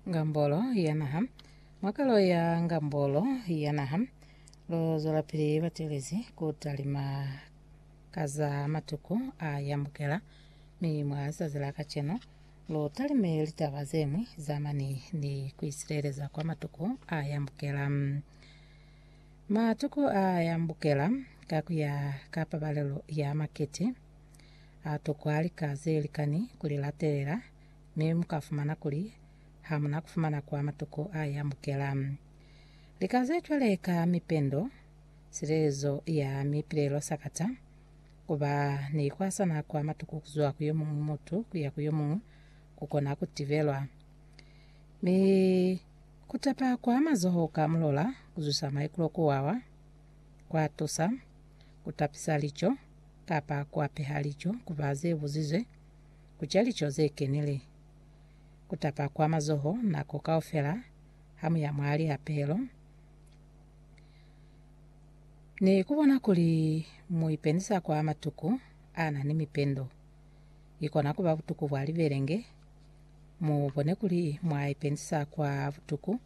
Ngambolo ya naha. Mwa kalo ya ngambolo ya naha, lu zwelapili batelezi ku talima ka za matuku a yambukela, mi mwa zazi la kacenu lu talime litaba ze ñwi za mane ni ku isileleza kwa matuku a yambukela. Matuku a yambukela ka ku ya ka pabalelo ya makete. Ha tokwa lika ze likani ku li latelela, mi mu ka fumana kuli ha mu na ku fumana kwa matuko a i amukela. Lika ze cwale ka mipendo, silelezo ya mipilelo sakata ku ba ni kwasana kwa matuko ku zwa ku yo muñwi mutu ku ya ku yo muñwi ku kona ku tibelwa. Mi ku tapa kwa mazoho ka mulola ku zwisa maikulo ku wawa, kwa tusa ku tapisa lico. kapa ku apeha lico ku ba ze buzizwe, ku ca lico ze kenile, ku tapa kwa mazoho nako kaufela ha mu ya mwa lihapelo, ni ku bona kuli mu ipendisa kwa matuku a na ni mipendo. I kona ku ba butuku bwa libelenge. Mu bone kuli mwa ipendisa kwa butuku.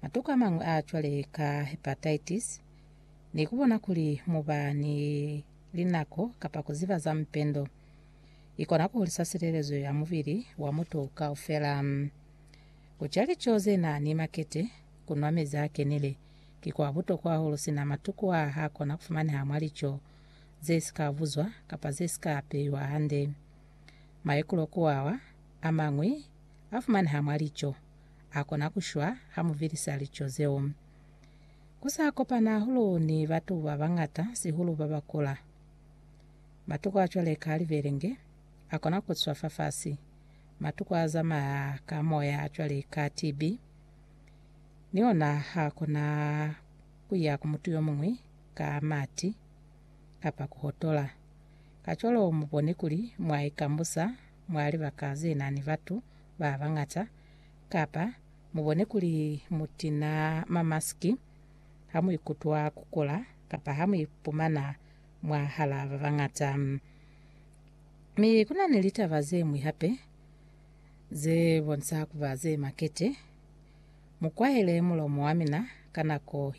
Matuku a mañwi a cwale ka hepatitis. ni ku bona kuli mu ba ni linako kapa ku ziba za mupendo i kona ku hulisa silelezo ya mubili wa mutu kaufela. Ku ca lico ze na ni makete, ku nwa mezi a kenile, ki kwa butokwa hahulu sina matuku a ha kona ku fumaneha mwa lico ze si ka buzwa kapa ze si ka peiwa hande. Maikulo ku awa a mañwi a fumaneha mwa lico a kona ku shwa ha mu vilisa lico zeo. Ku sa kopana hahulu ni batu ba bañata, sihulu ba ba kula. Matuku a cwale ka libelenge a kona ku swa fafasi, matuku a zamaya ka moya a cwale ka TB ni ona ha a kona ku ya ku mutu yo muñwi ka mati kapa ku hotola. Kacwalo mu bone kuli mwa ikambusa mwa libaka ze na ni batu ba bañata kapa Mubone kuli mutina mamaski hamuikutwa kukula kapa hamuipumana mwahalaa babañata. Mi kuna ni litaba zeñwi hape zebonisa kuba zemakete. Mukwaele mulomo wamina ka nako